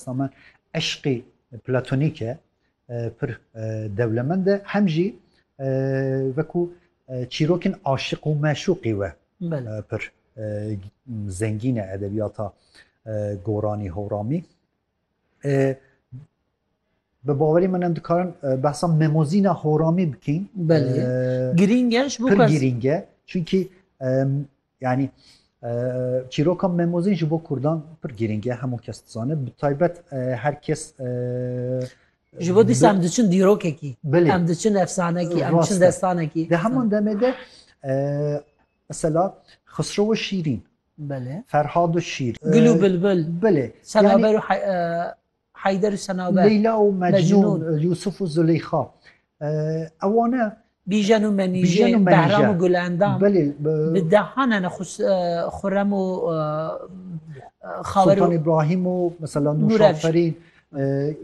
Dîsa me eşqê platonîk e pir dewlemend e hem jî wekû çîrokên aşiq û meşûqî we pir zengîn e edebiyata goranî hewramî. Bi bawerî min em dikarin behsa memozîna horamî bikîn. Belê girîng e ji bo girîng e çünkî Yanî çîroka Memozîn ji bo Kurdan pir girîng e hemû kes dizane bi taybet her kes Ji bo dîsa em diçin dîrokekî em diçin efsanekî em diçin destanekî Di heman demê de mesela Xisrowa Şîrîn Belê Ferhadu Şîr Gulu Bilbil Belê Senaberu Heyder û Senaber. Leyla û Mecnûn. Yûsûf û Zuleyxa. Ewan e. Bîjen û Menîje. Behram û Gulendam. Belê. Bi dehan hene Xurrem û Xawer û. Sultan Îbrahîm û mesela Nûşaferîn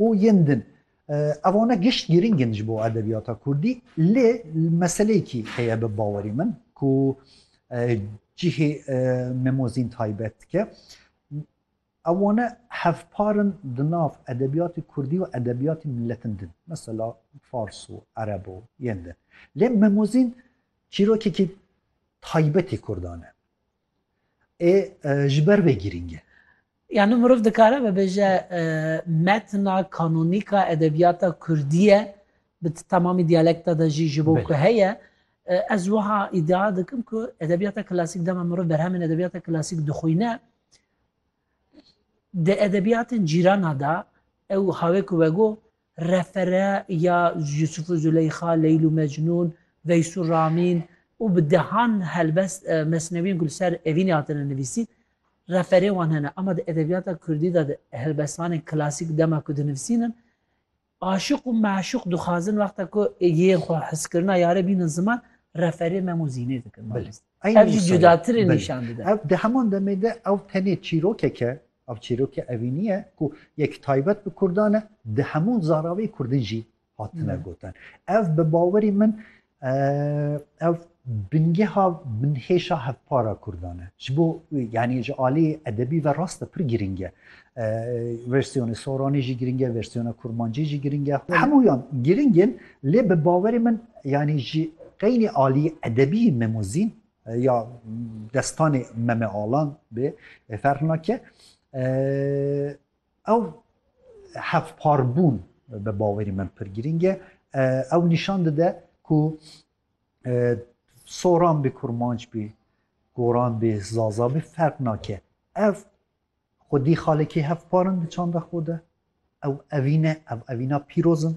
û yên din. Ewan e gişt girîng in ji bo edebiyata kurdî lê meseleyekî heye bi bawerî min ku cihê Memozîn taybet dike. Ev wane hevpar in di nav edebiyatê kurdî û edebiyatê miletin din, mesela fars û ereb û yên din. Lê Memozîn çîrokekî taybetê kurdan e. Ê ji ber vê girîng e. Yanî mirov dikare bibêje metna kanonîk a edebiyata kurdî ye, bi temamî diyalekta de jî ji bo ku heye. Ez wiha îdia dikim ku edebiyata klasîk dema mirov berhemên edebiyata klasîk dixwîne, Di edebiyatên cîrana de ew ha wê ku vegot refere ya Yusuf û Zuleyxa, Leyl û Mecnûn, Veys û Ramîn û bi dehan helbest mesnewiyên ku li ser evînê hatine nivîsîn referê wan hene. Ama di edebiyata kurdî de di helbestanên klasîk dema ku dinivîsînin Aşiq û meşûq dixwazin wexta ku yên xwe hiskirina yare bînin ziman, referê mem û zînê dikin balîst. Ev jî cudatirê nîşan dide. Ev di heman demê de ew tenê çîrokek e, ev çîrokê evînî ye ku yek taybet bi kurdan e, di hemû zaravê kurdin jî hatine gotin. Ev bi bawerî min Ev bingeha binhêşa hevpara Kurdan e. Ji bo yanî ji aliyê edebî ve rast e pir girîng e. Versiyonê Soranî jî girîng e, versiyona Kurmancî jî girîng e. Hemûyan girîng in lê bi bawerê min yanî ji qeynî aliyê edebî Memozîn ya destanê Meme Alan bê ferq nake. Ew hevparbûn bi bawerî min pir girîng e. Ew nîşan dide ku soran bê kurmanc bê, goran bê, zaza bê ferq nake. Ev xwedî xalekî hevparin di çanda xwe de. Ew evîn e, ev evîna pîroz in.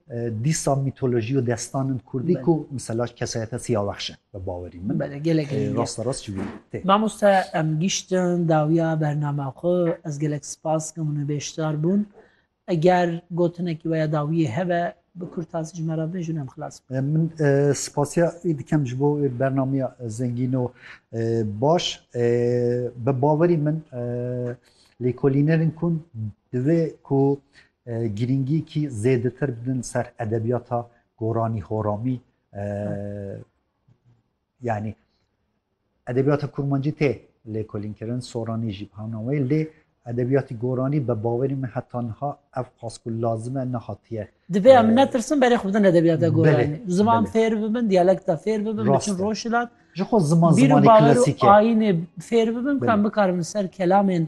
Dîsa mîtolojî û destanin kurdî ku mesela kesayeta Siyawexş e bi bawerî min. Bele gelek e. Rasta rast ji wî tê. Mamoste em giştin dawiya bernama xwe ez gelek spas kim û beşdar bûn. Eger gotinekî weya dawiyê hebe bi kurtasî ji me re bin jûn em xilas bin. Min spasiya wî dikim ji bo wê bernameya zengîn û baş. Bi bawerî min lêkolînerên kun divê ku Girîngîyekî zêdetir bidin ser edebiyata goranî horamî yanî edebiyata kurmancî tê lêkolînkirin soranî jî bi hemna wê lê edebiyatî goranî bi bawerî min heta niha ev qas ku lazim e nehatiye. Divê em netirsin berê xwe bidin edebiyata goranî ziman fêr bibin diyalekta fêr bibin biçin rojhilat ji xwe ziman zimanê klasîk e bîr û bawer û ayînê fêr bibin ku em bikarin li ser kelamên